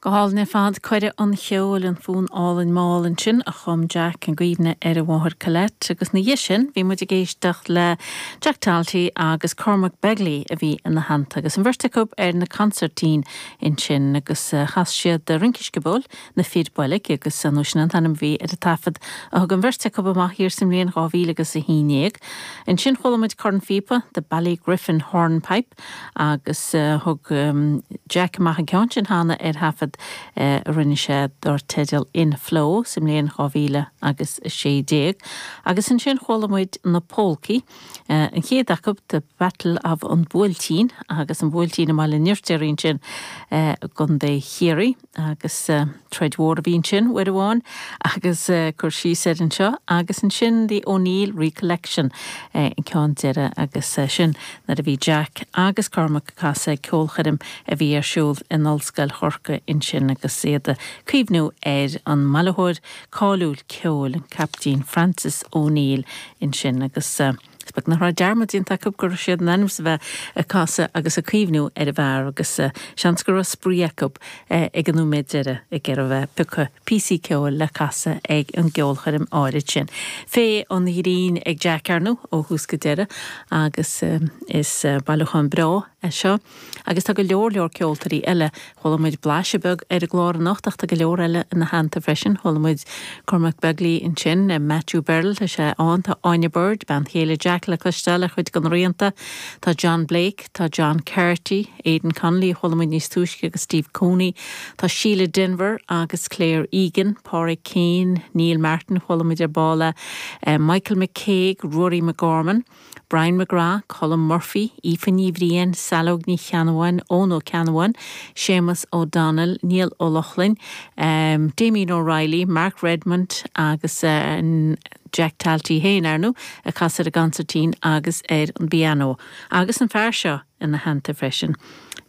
Go hálainn ar fad, coire an cheoil, an fonn álainn mall ansin a chum Jack i gcuimhne ar a mháthair Colette agus ina dhiaidh sin bhí muid ag éisteacht le Jack Talty agus Cormac Begley a bhí ina theannta agus an bheirt acu ar na consairtín ansin agus chas siad Rince Sciobóil na Fir Bolg agus ar ndú sin an t-ainm a bhí ar an taifead a thug an bheirt acu amach thiar sa mbliain dhá mhíle agus a haon déag. Ansin chuala muid cornphíopa, The Ballygriffin Hornpipe, agus thug Jack amach an ceann sin cheana ar thaifead a rinne sé dar teideal In Flow sa mbliain 2000 agus 16, agus ansin chuala muid na Pólcaí, an chéad acu, The Battle of An Buailtín, agus an Buailtín i mBaile an Fhirtéaraigh ansin i gContae Chiarraí. agus troid mhór a bhí ansin uair amháin agus cur síos air anseo agus ansin The O'Neill Recollection an ceann deireadh agus sin nuair a bhí Jack agus Cormac ag casadh ag ceolchoirm a bhí ar siúl in Ollscoil Chorcaí ansin agus iad a' cuimhniú ar an mbailitheoir cáiliúil ceoil an Caiptín Francis O'Neill ansin agus. Is beag nach raibh dearmad déanta acu go raibh siad in ainm is a bheith ag casadh agus ag cuimhniú ar an bhfear agus seans go raibh spraoi acu ag an nóiméad deiridh ag iarraidh a bheith ag piocadh píosaí ceoil le casadh ag an gceolchoirm áirid sin. Féith an ghrinn ag Jack ar ndú ó thús go deireadh agus is bailiúchán breá é seo. Agus tá go leor leor ceoltóirí eile. Chuala muid blaiseadh beag ar an gclár anocht ach tá go leor eile ina theannta freisin. Chuala muid Cormac Begley ansin, Matthew Berrill, tá sé ann, tá Áine Bird, bean chéile Jack, le cloisteáil ar chuid de na rianta, tá John Blake, tá John Carty, Aidan Connolly a chuala muid níos túisce agus Steve Cooney, tá Síle Denvir agus Claire Egan, Pádraic Keane, Neil Martin, chuala muid ar ball é, Michael McCague, Ruairí McGorman. Brian McGrath, Colm Murphy, Aoife Ní Bhriain, Saileog Ní Cheannabháin, Eoghan Ó Ceannabháin, Séamas Ó Domhnaill, Neil Ó Lochlainn, Damien O'Reilly, Mark Redmond agus Jack Talty féin, ar ndú, a chas ar an gconsairtín agus ar an bpianó, agus an fear seo ina theannta freisin.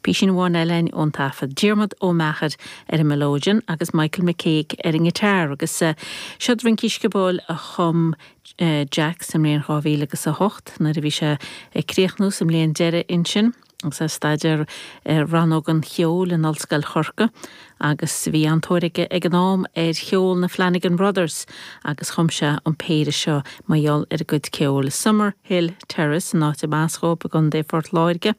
Písín amháin eile a'inn ón taifead. Diarmaid Ó Meachair ar an melodeon agus Michael McCague ar an ngiotár agus seod rincí sciobóil a chum Jack sa mbliain dhá mhíle agus a hocht nuair a bhí sé ag críochnú sa mbliain deireadh ansin agus é ag staidéar i Rannóg an Cheoil in Ollscoil Chorcaí agus bhí an-tóir aige ag an am ar cheol na Flanagan Brothers agus chum sé an péire seo mar gheall ar a gcuid ceoil, Summerhill Terrace an áit arbh as dhóibh i gContae Phort Láirge.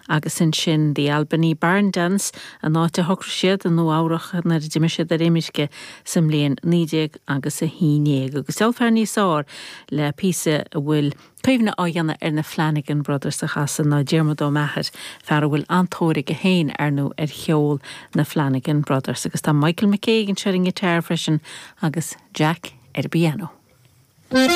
Agus ansin The Albany Barn Dance, an áit a shocraigh siad i Nua Eabhrach nuair a d'imigh siad ar imirce sa mbliain naoi déag agus a haon déag. Agus ceolfar in ómós arís le píosa a bhfuil cuimhne á dhéanamh ar na Flanagan Brothers a chasadh ná Diarmuid Ó Meachair, fear a bhfuil an-tóir aige féin, ar ndóigh, ar cheol na Flanagan Brothers. Agus tá Michael McCague anseo ar an ngiotar freisin agus Jack ar an bpiano.